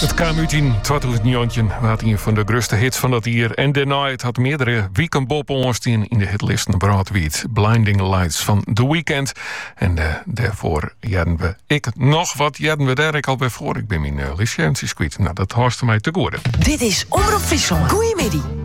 It kaam út yn 2019, waard ien fan de grutste hits fan dat jier en dêrnei, it hat meardere wiken boppe-oan stien yn de hitlisten wrâldwiid. Blinding Lights fan The Weeknd. En eh, dêrfoar hearden we ek noch, wat hearden we dêr ek alwer foar. Ik bin myn eh, listje eventsjes kwyt. No, dat hâldst fan my te goede. Dit is Omrop Fryslân. Goeiemiddei.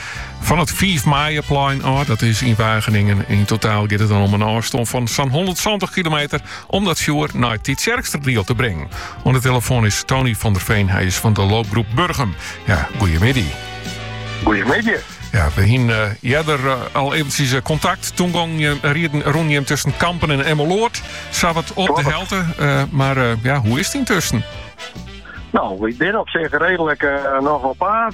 Fan it Fiif Maaieplein ôf, dat is yn Wageningen. Yn totaal giet it dan om in ôfstân fan sa'n 170 kilometer om dat fjoer nei Tytsjerksteradiel te bringen. Oan de telefoan is Tony van der Veen, hy is fan de loopgroep Burgum. Ja, goeiemiddei. Goeiemiddei. Ja, we hiene earder eh, al eventsjes eh, kontakt. Toen gongen eh, rûnen jim tusken Kampen en Emmeloord. Sawat op de helte, mar ja, hoe is it yntusken? No, wy binne op sich redelik noch op paad.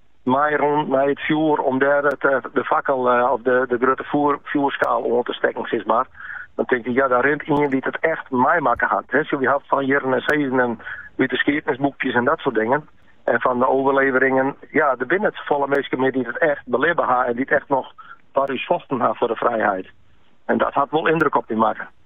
mei rûn nei it fjoer om dêr it, eh, de fakkel eh, of de, de grutte foer, fjoerskaal oan te stekken, sis mar. Dan tinke je, ja, dêr rint ien dy't it echt meimakke hat. He, wy ha it fan hearren en sizzen en út de skiednisboekjes en dat soart dingen. En fan de oerleveringen, ja, der binne net safolle minsken mear dy't it echt belibbe ha en dy't echt noch foar ús fochten ha foar de frijheid. En dat hat wol yndruk op dy makke.